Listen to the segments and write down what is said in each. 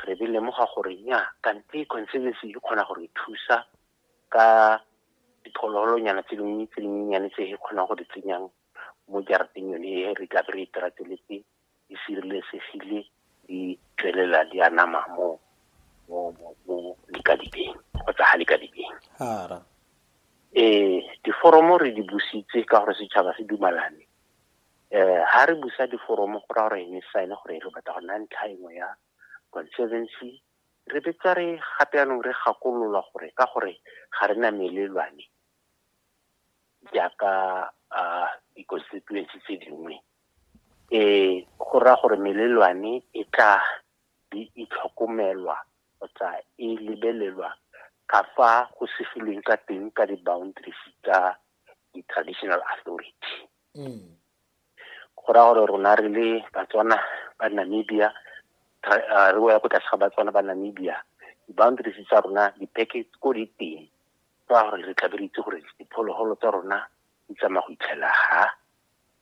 re be lemoga gore nya kante conservancy e kgona gore thusa ka diphologolonyana tse dingwe tse dinyenyane tse e kgonang go di tsenyang mo jarateng yone e re tla re e terateletse di sireletsegile di tswelela di a nama mo mo mo likadibeng kgotsa ga likadibeng hara eh diforomo re di busitse ka gore setšhaba se dumalane eh ha re busa diforomo go ra gore ne sign gore re batla go nna ntlha engwe ya conservancy re betsa re gape yanong re gakololwa gore ka gore ga re na melelwane jaaka di-constituency tse dingwe um go raya gore melelwane e tla di itlhokomelwa kgotsa e lebelelwa ka fa go sefilweng ka teng ka di-boundaries tsa di-traditional authority mm. go raya gore rona re le batswana ba namibia uh, re ya ko tlase ga batswana ba namibia di-boundaries tsa rona di-package ko di teng ka gore re tlabe re itse gore diphologolo tsa rona di tsamaya go itlhela ha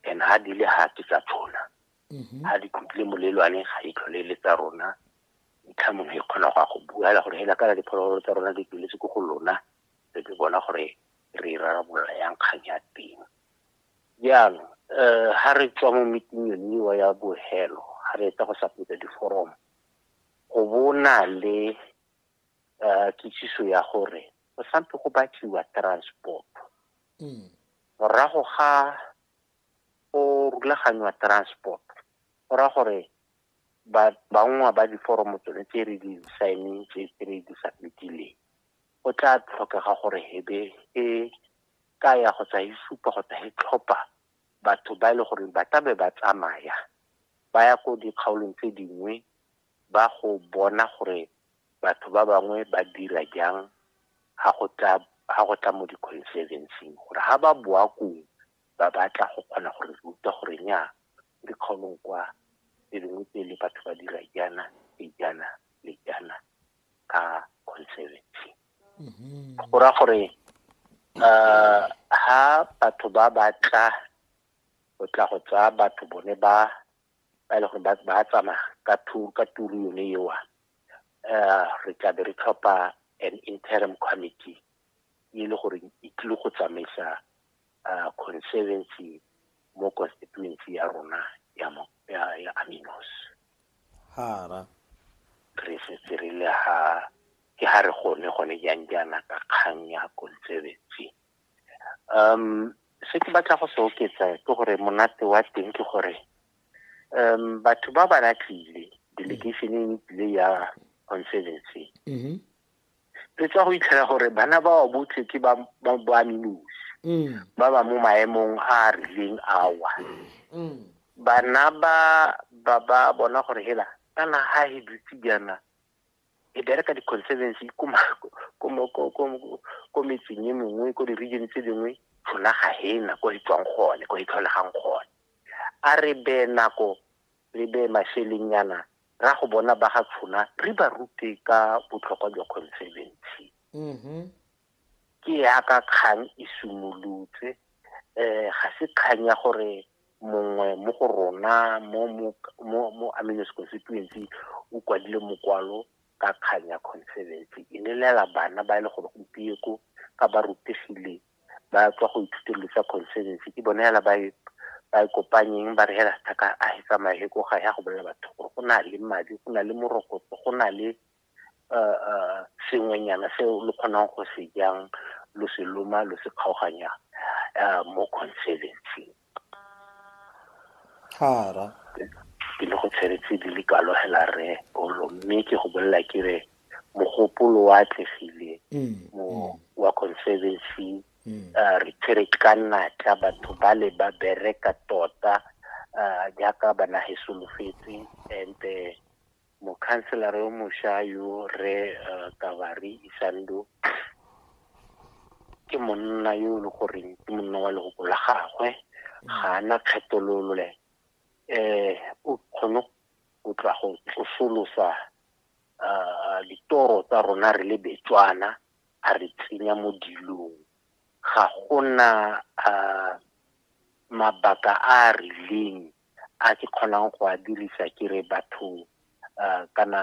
and ha di le ha ke tsa tshona ha mm-hmm. di tlotlile molelwane ga e tlhole le tsa rona ntlha mongwe e kgona go ya go bua fela gore hela kana diphologolo tsa rona di tsweletse ko go lona re di bona gore re irarabolola e yang kgang ya teng jaanong um ha re tswa mo meeting yoniwa ya bohelo ha re etsa go sapetsa diforomo go bona le um kitsiso ya gore go sampe go batliwa transport hmm. morago ga go rulaganywa transport go raya gore bangwa ba diforomo tsone tse re di saeneng tse re di submitileng go tla tlhokega gore hebe e kaya kgotsa e supa kgotsa e tlhopha batho ba e le gore ba tlabe ba tsamaya ba ya ko dikgaolong tse dingwe ba go bona gore batho ba bangwe ba dira jang ha go tla ha go tla mo di-conservancing gore ha ba boa kong ba batla go kgona gore re ruta gore nya dikgaolong kwa tse dingwe tse le batho ba dira jaana le jaana le jaana ka conservancy go ra gore um ha batho ba ba tla go tla go tsaya batho bone ba ba e le gore ba tsamaya ka ka turu yone ewa um re tlabe re tlhopha an interim committee e le gore e tlile go tsamaisa uh, conservancy mo constituency ya rona ya, ya, ya aminos hara re setse re le ha ke ha re gone gone jang jaana ka kgang ya conservancy um se ke batla go se oketsa ke gore monate wa teng ke gore um batho ba ba latlile delegation e tlile ya conservancy mm-hmm. re tswa go itlhela gore bana ba wa botlhe ke ba boaminosi mm. ba ba mo maemong a a rileng awa mm. bana ba ba ba bona gore hela kana ha he dutse jaana e bereka di-conservancy ko metseng e mengwe ko di-region tse dingwe rona ga he na ko e tswang gone ko e tlholegang gone a re be nako re be masheleng yana ra go bona ba ga Tshona re ba rute ka botlhokwa jwa conservancy mm-hmm. ke yaka kgang e simolotse um ga se kgang ya gore mongwe mo go rona mo mo aminos constituency o kwadile mokwalo ka kgang ya conservancy e lelela bana ba e le gore gompieko ka ba rutegile ba tswa go ithuteng dilo tsa conservancy ke bone hela ba e- ba e kopanyeng ba re hela sethaka a e tsamaye he ko ga ya go bolela batho gore go na le madi go na le morokotso go na le uh, uh, sengwenyana seo lo kgonang go se jang lo se loma lo se kgaoganyang uh, mo conservancy Thara. Ke le go tshwere tse di le kalo hela Rre Polo mme ke go bolelela ke re mogopolo wa atlegile mo wa Conservancy re tshwere ka natla batho ba le ba bereka tota jaaka ba nage solofetse and Mokhanselara yo mosha yo, Rre Kabari Isandu, ke monna yo e le goreng ke monna wa leoko la gagwe, ga a na kgetholole. Um o kgone go tla go tsosolosa um ditoro tsa rona re le Betswana, a re tsenya mo dilong. Ga gona um mabaka a a rileng a ke kgonang go a dirisa ke re batho kana